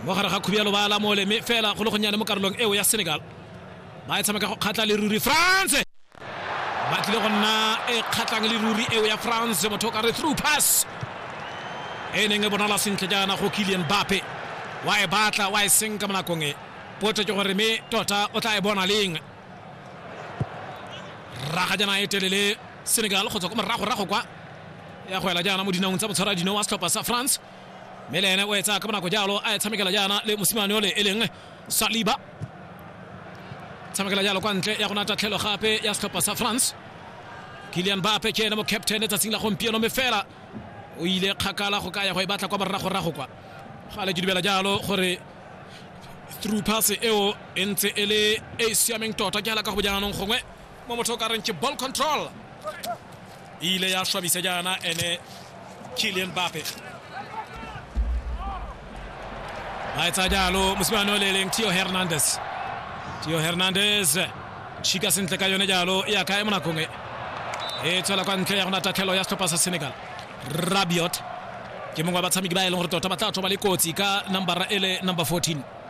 mo gare ga khubialo ba lamole mme fela go le gonnyane mo karolong eo ya senegal ba e tshameka go kgatlha le ruri france ba tlile go nna e kgatlhang le ruri eo ya france motho o ka re through pass e neng e bonala sentle jaana go kilian bape wa e batla wa e senka mo nakong e potso ke gore mme tota o tla e bona leng raga jaana e telele senegal go tswa ko moragorago kwa ya go ela jaana mo dinaong tsa motshwara dino wa setlhopha sa france mme le ene o etsa ka bonako jalo a e tshamekela jaana le mosimane ole e leng saliba tshamekela jalo kwa ntle ya gona tatlhelo gape ya setlhopha sa france kilian bape ke ene mo captain tsatsing la gompieno mme fela o ile kgakala go ka ya go e batla kwa moragorago kwa ga le ke dumela jalo gore through pass eo e ntse e le e e siameng tota ke ala ka go jaanong gongwe mo motho o ka reng ke ball control e ile ya swabisa jaana ene Kylian Mbappe a etsa jalo mosimane o le eleng Theo Hernandez Theo Hernandez tšhika sentle ka yone jalo e aka e mo nakong e e tswela kwa ntle ya gona tatlhelo ya setlhopha sa Senegal Rabiot ke mongwe wa batshameki ba e leng gore tota ba tla tswa ba le kotsi ka nambara e le number 14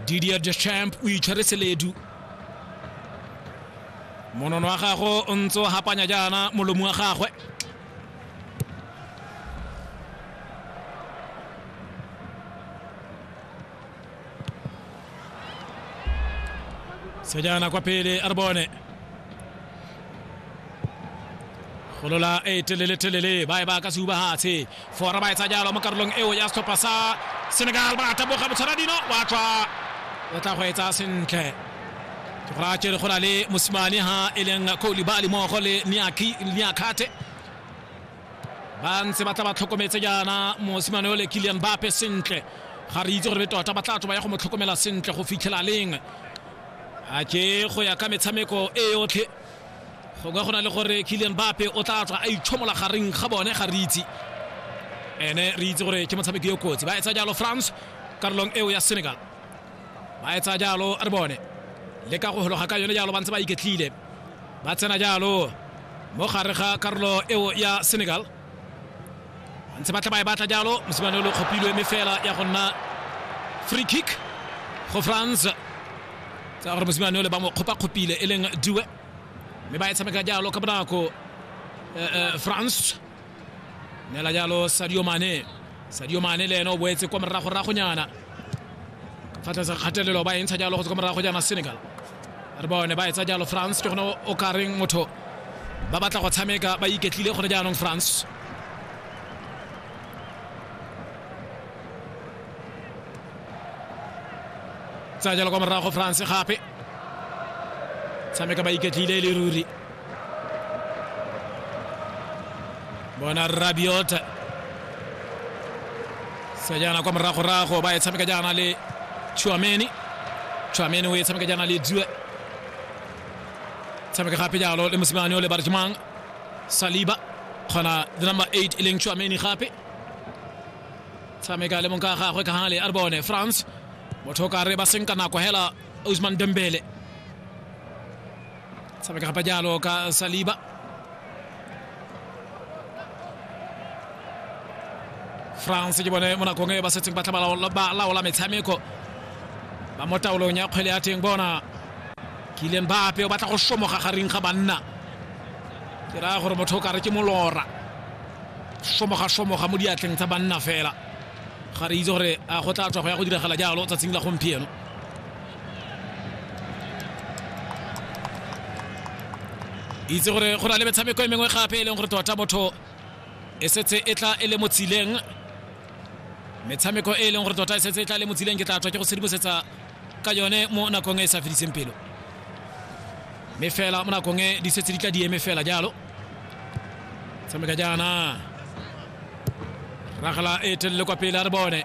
didier deschamp o itshwere seledu monono wa gago o ntse o hapanya jaana molomo wa gagwe sejana kwa pele a re bone golola e telele telele ba e ba ka se ubahatshe Fora ba etsa jalo mo karolong eo ya setlhopha sa Senegal ba taboga botshwaradino wa tswa o tla go etsa sentle ke gore a tsere go na le mosimane ha e leng Koulibaly mmogo le Niakate ba ntse ba tla ba tlhokometse jaana mosimane o le Kylian Mbappe sentle ga re itse gore be tota ba tla tswa ba ya go mo tlhokomela sentle go fitlhela leng a ke go ya ka metshameko e yotlhe gongwe go na le gore kilian bape o tla tswa a itshomola gareng ga bone ga re itse ene re itse gore ke motshameki yo kotsi ba etsa jalo france karolong eo ya senegal ba etsa jalo re bone le ka go hologa ka yone jalo ba ntse ba iketlile ba tsena jalo mo gare ga karolo eo ya senegal ntse batla ba e batla jalo mosimane o le kgopilwe mme fela ya go nna free kick go france tsa gore mosimane o le ba mo kgopakgopile e leng due mme ba e tshameka jalo ka bonako france neela jalo sadio mane sadio mane le ene o boetse kwa moragoragonyana fa tlase kgatelelo ba e ntsha jalo go tswa kwa morago jaana senegal re bone ba etsa jalo france ke gone o ka reng motho ba batla go tshameka ba iketlile gone jaanong france tsa jalo kwa morago france gape tshameka ba iketlile e le ruri bona rabiota sa jaana kwa moragorago ba e tshameka jaana le chuameni chuameni o e tshameka jaana le due tshameka gape jalo le mosimane o le barjmang saliba kgona le number 8 e leng chuameni gape tshameka le mong ka gagwe ka gale a re bone france motho o ka re ba senka nako hela usman dembele Sabe ka gapa jalo ka Saliba. France ke bone mo nakong e ba setseng ba tla ba laola metshameko ba mo taolong ya kgwele ya teng bona kileng ba ape o batla go somoga gareng ga banna ke raya gore motho o kare ke molora somoga somoga mo diatleng tsa banna fela ga re itse gore a go tla tswa go ya go diragala jalo tsatsing la gompieno itse gore go na le metshameko e mengwe gape e leng gore tota motho e setse e tla e le mo tsileng metshameko e e leng gore tota e setse e tla e le mo tsileng ke tla tswa ke go sedimosetsa ka yone mo nakong e e sa fediseng pelo mme fela mo nakong e di setse di tla di eme fela jalo tshameka jaana ragala e telele kwa pele a re bone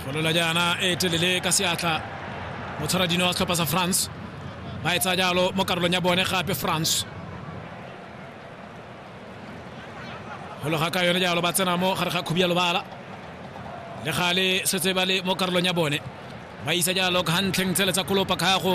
golola jaana e telele ka seatla mo tshwara dino wa setlhopha sa france ba e tsaya jalo mo karolong ya bone gape france gologa ka yone jalo ba tsena mo gare ga khubi ya lobala le gale setse ba le mo karolong ya bone ba isa jalo ka gantlheng tsele tsa kolopa kgago